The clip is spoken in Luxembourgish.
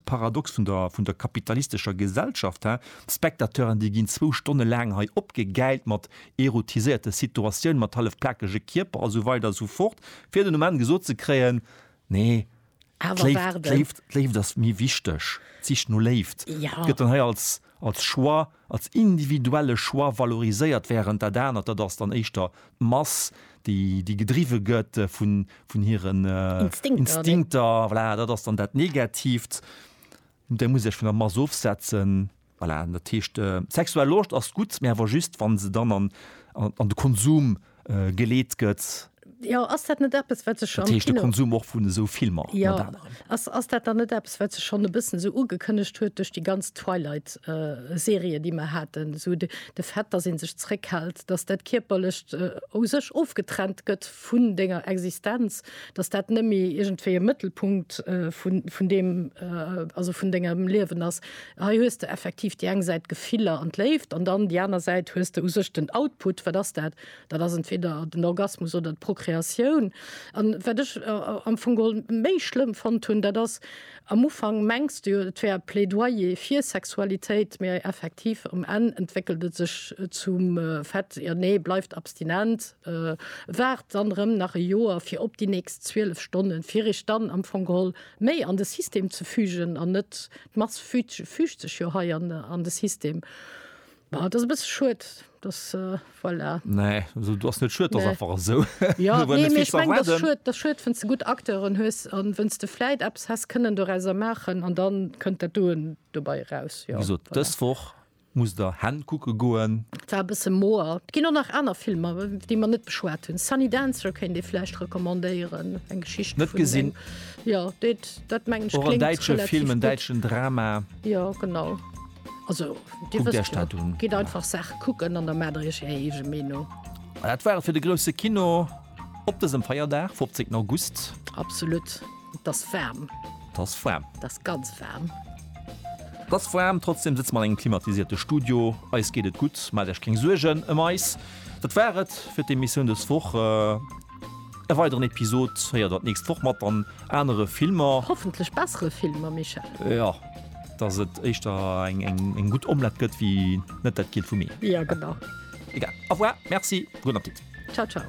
Paradox vun der vun der kapitalistescher Gesellschaft, he? D'Spectateuren, déi ginn zwou Stonne laang hei opgegäilt mat erotiséierte Situatiounen, mat hallef plakege Kierper a sou weider a sou fort, fir den Ament gesot ze kréien, Nee, d'Léift, d'Léift, d'Léift ass méi wichteg, d'Sich no Léift gëtt dann hei als, als Choix, als individuelle Choix valoriséiert, während dat anert, dat ass dann éischter d'Mass, déi, déi gedriwwe gëtt vu, vun hiren Instinkter, voilà, dat ass dann dat Negatiivt, där muss sech vun der Mass ofsetzen. Voilà, dat heescht, sexuell Loscht ass gutt, mä awer just, wa se dann an, an de Konsum geleet gëtt. Jo ass dat net eppes wat sech am Kino Konsum och vun esou Filmer jo ass ass dat dann net eppes wat sech schonn e bëssen esou ugekënnegt huet duerch déi ganz Twilight Serie déi mer haten esou de de Fait datt ee sech zréckhält datt dat kierperlecht ou sech ofgetrennt gëtt vun denger Existenz datt dat net méi iergendwéi e Mëttelpunkt vun vun deem also vun dengem Liewen ass Hei hues de effektiv déi eng Säit d'Gefiller an d'Léift an dann déi aner Säit hues de u sech den Output. Wat ass dat? Dat ass entweder den Orgasmus oder d'Prokreatioun. An wat ech am Fong geholl méi schlëmm fonnt hunn, dat ass, am Ufank mengs de jo, et wär e Plädoyer fir Sexualitéit, mä effektiv um Enn entwéckelt et sech zum Fait, jo nee, bleift abstinent, waart dann erëm nach e Joer fir op déi nächst 12 Stonnen, fir iech dann am Fong geholl, méi an de System ze fügen an net d'Mass fügt sech jo hei an de System. Bon, et ass e bësse schued, dass, voilà. Nee, also do ass net schued, et ass einfach esou. Jo, nee, mee ech mengen, et ass schued, et ass schued, wenn's de gutt Acteuren hues a wenn's de vläit eppes häss kënnen dorauser maachen an da kënnt dat doen dobei eraus, jo, voilà. Wéi gesot, dës Woch. Muss der Hen kucke goen. War e bësse moer. Et ginn och nach aner Filmer, déi mer net beschwat hunn. Sunny Dancer kéint ee vläicht recommandéieren, eng Geschicht vun. Net gesinn. Jo, deet, dat mengen ech, kléngt relativ gutt. Och en däitsche Film, en däitschen Drama. Jo, genau. Also, Dir wësst jo, gitt einfach Saache kucken an da maacht der Iech Är eege Meenung. Dat war et fir de grousse Kino. Op dësem Feierdag, 15 August. Absolut, et ass waarm. Et ass waarm. Et ass ganz waarm. Et ass waarm, trotzdeem sëtze mer an engem klimatisierte Studio. Eis geet et gutt, maacht Iech keng Suergen ëm eis. Dat war et fir d'Emissioun dës Woch. E weideren Episod héiert Der d'nächst Woch mat dann anere Filmer. Hoffentlech bessere Filmer, Michel. Jo. Dass et éischter eng gutt Omlett gëtt wi net dat Giel vu mir. Jo genau. Egal, au revoir, merci, gudden Appetit. Ciao ciao.